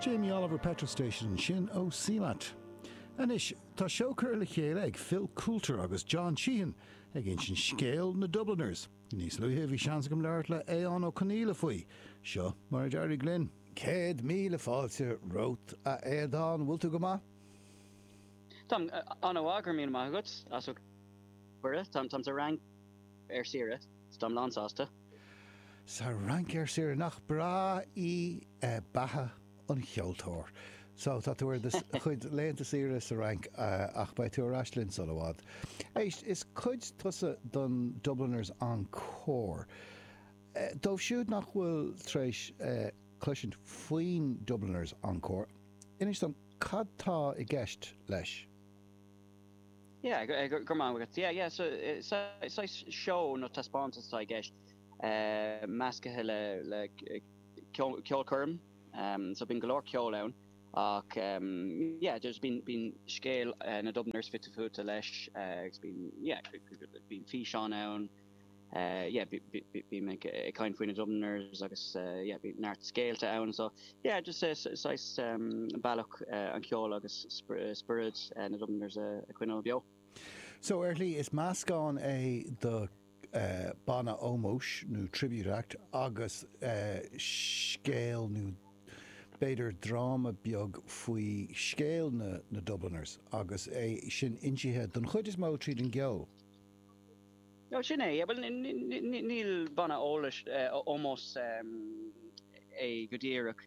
Jamie Oliver Petrol Station ansin ó CMAT. Anois, tá seó curtha le chéile ag Phil Coulter agus John Sheahan ag insint scéal na Dubliners. Níos luaithe, bhí seans agam labhairt le Aodhán Ó Conaola faoi. Seo mar a d'éirigh linn. Céad míle fáilte romhat, a Aodhán, an bhfuil tú go maith? Táim an-mhaith, go raibh míle maith agat as ucht an cuireadh. Táim sa Fhrainc ar saoire, so táim lán-sásta. Sa Fhrainc, ar saoire. Nach breá í beatha an cheoltóir! So, tá tú ar do chuid laethanta saoire sa Fhrainc ach beidh tú ar ais linn sula bhfad. Éist, is cuid tusa den Dubliners Encore. Dóibh siúd nach bhfuil tar éis cloisint faoin Dubliners Encore, inis dom cad tá i gceist leis. Yeah, go raibh maith agat. Yeah, yeah, so, saghas seó nó taispeántas atá i gceist, meascaithe le ceolchoirm, so bíonn go leor ceoil ann ach yeah, just bíonn scéal na Dubliners fite fuaite leis agus bíonn, yeah, bíonn físeáin ann. yeah bímid ag caint faoi na Dubliners agus yeah bhí neart scéalta ann so yeah just saghas bealach an cheol agus spiorad na Dubliners a choinneáil beo. So ar shlí, is meascán é de banna ómóis nó tribute act agus scéal nó b'fhéidir dráma beag faoi scéal na Dubliners agus é sin insithe don chuid is mó tríd an gceol. No, sin é. Bhuel, ní banna, eh, ómós é go díreach.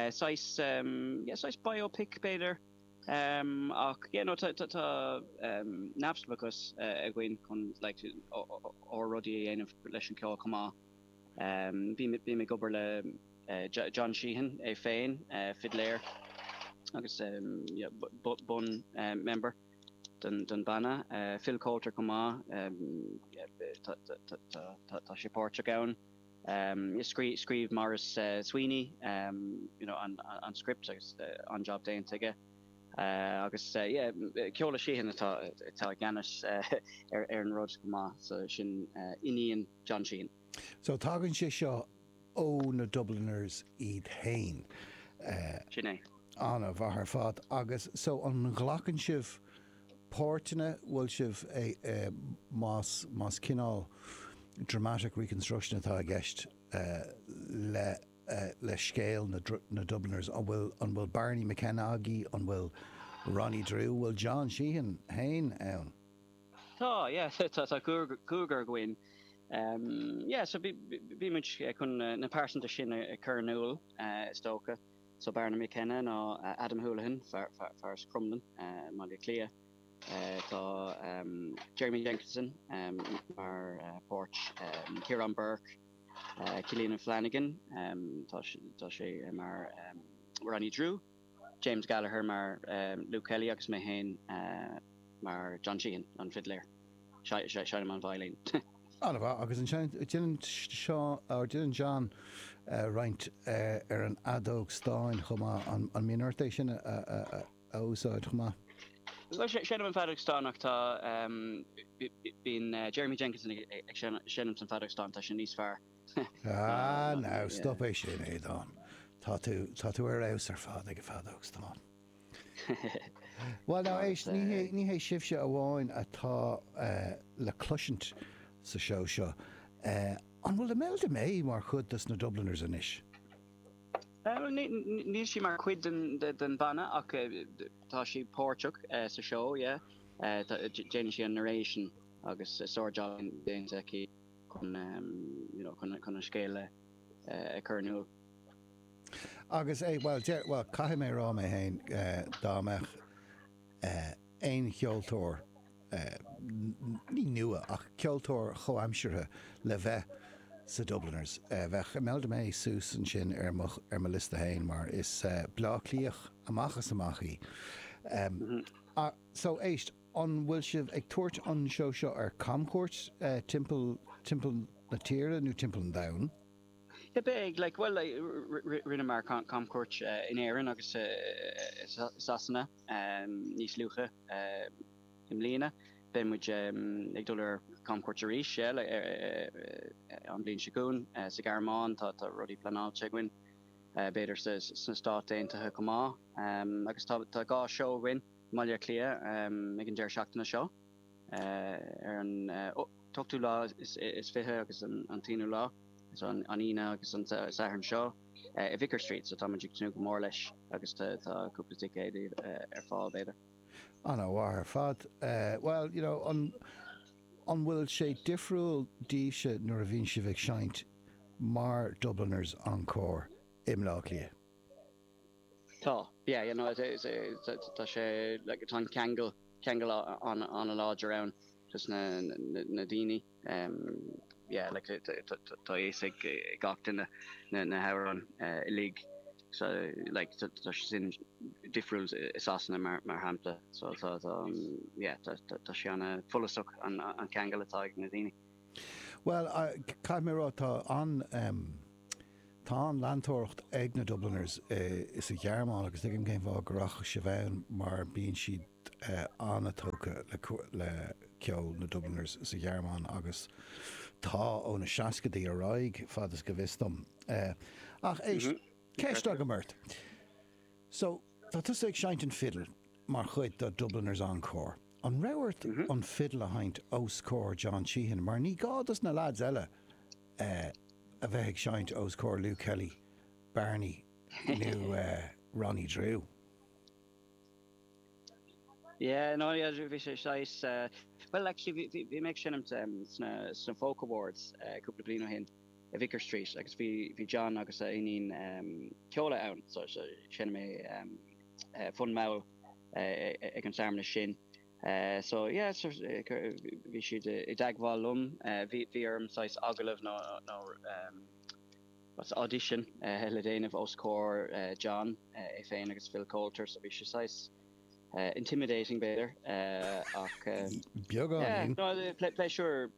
Saghas, yeah, saghas biopic, b'fhéidir. Ach, yeah, no, tá neamhspleachas againn chun, like, ár rudaí a dhéanamh leis an cheol chomh maith. Bím ag obair le John Sheahan é féin, fidléir agus, yeah, bun member. den banna, Phil Coulter chomh maith, tá sé páirteach ann. Scríobh Maurice Sweeney an script agus an-job déanta aige. Agus yeah, Ceoladh Sheahan atá i gceannas ar an rud chomh maith, so sin iníon John Sheahan. So tagann sé seo ó na Dubliners iad féin, eh. Sin é. Ana-mhaith ar fad. Agus so an nglacann sibh páirteanna, bhfuil sibh más más cineál dramatic reconstruction atá i gceist le le scéal na na Dubliners, an bhfuil an bhfuil Barney McKenna agaibh, an bhfuil Ronnie Drew, bhfuil John Sheahan féin ann? Tá, yeah, tá, tá cúigear againn. Yeah, so bhí, bhí muid chun na pearsanta sin a chur in iúl, is dócha. So Barney McKenna ná Adam Houlihan, fear as Crumlin i mBaile Átha Cliath. Tá Jeremy Jenkinson mar páirt, Ciarán Bourke, Cillian O'Flanagan, tá sé, tá sé mar Ronnie Drew. James Gallagher mar Luke Kelly agus mé féin mar John Sheehan, an fidléir. Seinnim an veidhlín. Ana mhaith. Agus ansin déanann John roinnt ar an fheadóg stáin chomh maith. An mbíonn ort é sin a úsáid chomh maith? Bhuel, seinnim an feadóg stáin ach tá, bíonn Jeremy Jenkinson ag seinm an feadóg stáin, tá sé níos fearr. Ah, now, stop é sin, a Aodáin. Tá tú, tá tú ar fheabhas ar fad ag an bhfeadóg stáin. Bhuel, now, éist, ní hé, ní hé sibhse amháin atá le cloisint sa seó seo. An bhfuil Imelda May mar chuid dos na Dubliners anois? Bhuel, níl sí mar chuid den bhanna ach tá sí páirteach sa seó, yeah. Déanann sí an narration agus sár-jab déanta aici. chun an scéal a chur in iúl. Agus é, bhuel, caithfidh mé a rá uaim féin, dá mbeadh aon cheoltóir, ní nua, ach ceoltóir chomhaimseartha le bheith sa Dubliners, bheadh Imelda May suas ansin ar mo, ar mo liosta féin, mar is Bleá Cliath amach is amach í. so, éist. An bhfuil sibh ag tabhairt an seó seo ar camchuairt timpeall timpeall na tíre nó timpeall an domhain? Bhuel, rinneamar camchuairt in Éirinn agus i Sasana níos luaithe i mbliana. Beidh muid ag dul ar camchuairt arís, yeah, an bhliain seo chugainn. Sa Ghearmáin, tá rudaí pleanáilte againn, b'fhéidir sna Stáit Aontaithe chomh maith. Agus tá dhá seó againn. mBaile Átha Cliath ag an deireadh seachtaine seo, ar an t-ochtú lá is fiche agus an t-aonú lá, is an Aoine agus an Satharn seo, i Vicar Street, so tá muid ag tnúth go mór leis agus tá cúpla ticéad ar fáil, b'fhéidir. Ana mhaith ar fad. Bhuel, you know, an, an bhfuil sé difriúil daoibhse nuair a bhíonn sibh ag seinnt mar Dubliners Encore i mBleá Cliath? Tá, yeah, you know, tá sé, like, tá an ceangal, ceangal an-láidir ann idir an ceol agus na, na daoine, yeah, like, tá fhios ag gach duine na hamhráin uilig, so, like, tá sé sin difriúil i Sasana mar shampla, so, tá, yeah, tá sé an-fhollasach an ceangal atá ag na daoine. Bhuel, caithfidh mé a rá, tá an-leantóireacht ag na Dubliners sa Ghearmáin agus tuigim cén fáth go rachadh sibh ann mar bíonn siad an-tógtha le ceol na Dubliners sa Ghearmáin agus tá ó na seascaidí ar aghaidh, fad is go bhfios dom. Ach éist, ceist agam ort. Tá tusa ag seinnt an fidil mar chuid do Dubliners Encore. An raibh ort an fidil a sheinnt os comhair John Sheahan mar ní gá dos na leaids eile a bheith ag seinnt os comhair Luke Kelly, Barney nó Ronnie Drew? Yeah, no, yeah, bhí sé saghas, bhuel, actually bhí mé ag seinmt sna Folk Awards cúpla bliain ó shin. i Vicar Street agus bhí bhí John agus a iníon ehm Ceoladh ann so so sheinn mé ehm fonn mall eh ag an searmanas sin eh so yeah so bhí siad i dteagmháil liom eh bhí bhí orm saghas agallamh nó nó ehm what's audition eh le déanamh os comhair eh John eh é féin agus Phil Coulter so bhí sé saghas intimidating b'fhéidir ach eh. beagáinín. Yeah no pléisiúr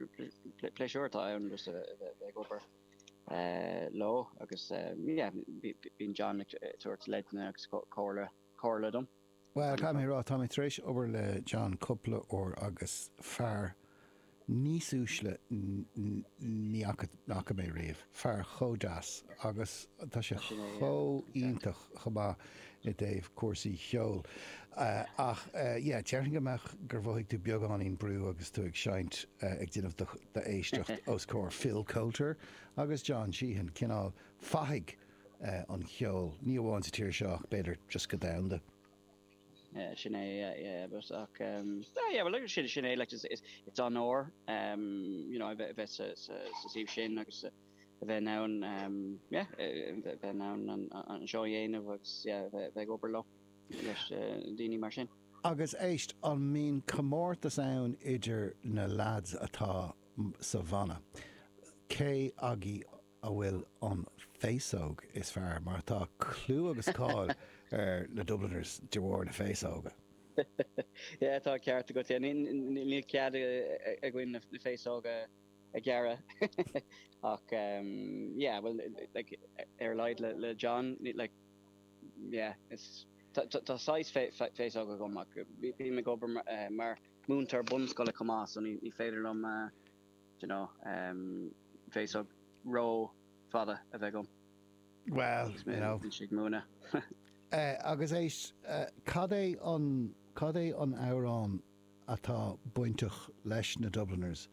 pléisiúr atá ann just a bheith ag obair leo agus yeah bíonn John ag tabhairt leideanna agus comhairle comhairle dom. Bhuel caithfidh mé a rá tá mé tar éis obair le John cúpla uair agus fear níos uaisle ní fhaca mé riamh. Fear chomh deas agus tá sé chomh iontach chomh maith i dtaobh cúrsaí cheoil. Ach yeah, déarfainn go mbeadh gur mhothaigh tú beagáinín brú agus tú ag seinnt, ag déanamh do éisteacht os comhair Phil Coulter agus John Sheahan, cineál fathaigh an cheoil, ní amháin sa tír seo ach b'fhéidir just go domhanda. Sin é, yeah, but ach em, ah yeah, well like, sin, sin é, like, it's, it's, it's onóir, um, you know, a bheith, a bheith sa, sa, sa suíomh sin agus a a bheith in ann, um, yeah, a a bheith bheith in ann an, an seó a dhéanamh agus yeah, a bheith, a bheith ag obair leo leis uh, daoine mar sin. Agus éist, an mbíonn comórtas ann idir na lads atá mm, sa bhanna? Cé agaibh. a bhfuil an féasóg is fearr, mar tá clú agus cáil ar na Dubliners de bharr na féasóige. Yeah, tá an ceart agat, yeah, níl cead againn na féasóga a ghearradh ach em, yeah, bhuel, like, ar a laghad le John, like, yeah, is, tá saghas féasóg agam ach bím ag obair mar múinteoir bunscoile chomh maith so ní féidir liom eh, you know, em, féasóg rófhada a bheith agam. Bhuel, agus éist, cad é an, cad é an amhrán atá bainteach leis na Dubliners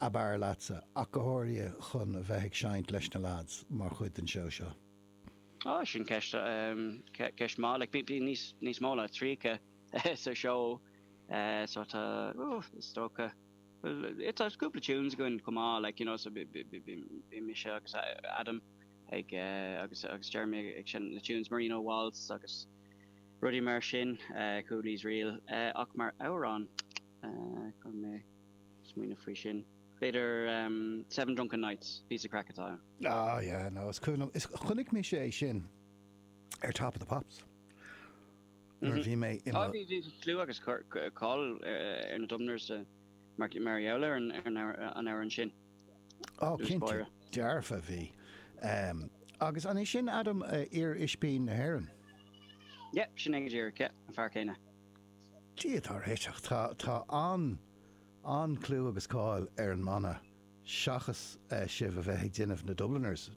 ab fhearr leatsa, ach go háirithe chun a bheith ag seinnt leis na lads mar chuid den seó seo? Ó, sin ceist, em, ceist maith, like, bí, bí níos, níos mó ná tríocha sa seó, eh, so tá, ó, is dócha, Bhuel, tá cúpla tunes againn chomh maith, like, you know, so bím mise agus Adam ag, agus, agus Jeremy ag seinm na tunes, Marino Waltz agus rudaí mar sin, Cooley's Reel, ach mar amhrán, caithfidh mé smaoineamh faoi sin, b'fhéidir Seven Drunken Nights, píosa craic atá ann. Ah yeah, no, chonaic mise é sin ar Top of the Pops. nuair a bhí mé i mo. Bhí clú agus cáil ar na Dubliners mar gheall ar an amhrán sin, dúirt Máire. Dearfa, bhí. Agus an é sin Adam, iar-Ispín na hÉireann? Yep, sin é díreach, an fear céanna. Dia dár réiteach, tá an-clú agus cáil ar an mbanna seachas sibh a bheith ag déanamh na Dubliners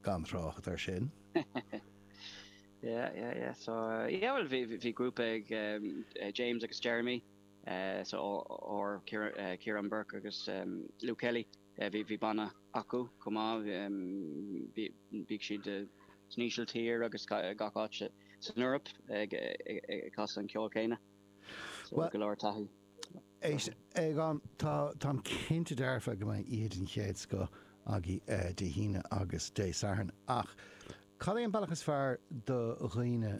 gan trácht air sin. Yeah yeah yeah so yeah bhuel bhí bhí grúpa ag James agus Jeremy so ár Ciarán Bourke agus Luke Kelly bhí bhí banna acu chomh maith bhí bhíodh siad san Ísiltír agus gach áit san Eoraip ag ag casadh an ceol céanna so go leor taithí. Éist, Eoghan, táim cinnte dearfa go mbeidh oíche den chéad scoth agaibh Dé hAoine agus Dé Sathairn, ach cad é an bealach is fearr do dhaoine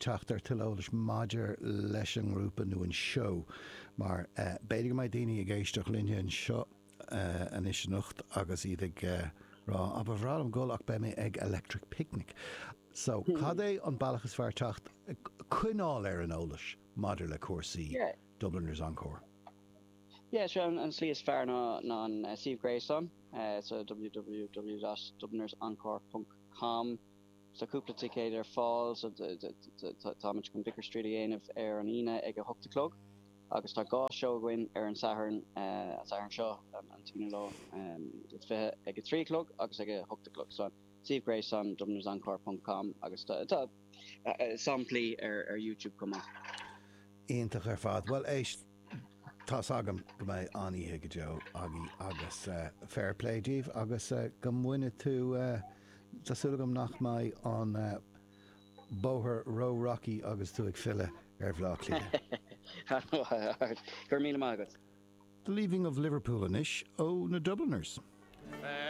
teacht ar tuilleadh eolais maidir leis an ngrúpa nó an seó? Mar b'fhéidir go mbeidh daoine ag éisteacht linne anseo anois anocht agus iad ag rá, ah, ba bhreá liom dhul ach beidh mé ag Electric Picnic. So, cad é an bealach is fearr teacht, coinneáil ar an eolas? maidir le cúrsaí Dubliners Encore? Yeah, sure, an slí is fearr ná an suíomh gréasáin, so www dublinersencore ponc com. Tá cúpla ticéad ar fáil, so táimid chun Vicar Street a dhéanamh ar an Aoine ag a hocht a chlog agus tá dhá seó againn ar an Satharn, an Satharn seo, an t-aonú lá is fiche, ag a trí a chlog agus ag a hocht a chlog. So suíomh gréasáin, dublinersencore ponc com agus tá. samplaí ar YouTube chomh maith. Iontach ar fad. Bhuel, éist, tá's agam go mbeidh an-oíche go deo agaibh agus fair play daoibh agus go mbaine tú, tá súil agam nach mbeidh an bóthar ró-rocky agus tú ag filleadh ar Bhleá Cliath. Go raibh míle maith agat. The Leaving of Liverpool anseo ó na Dubliners.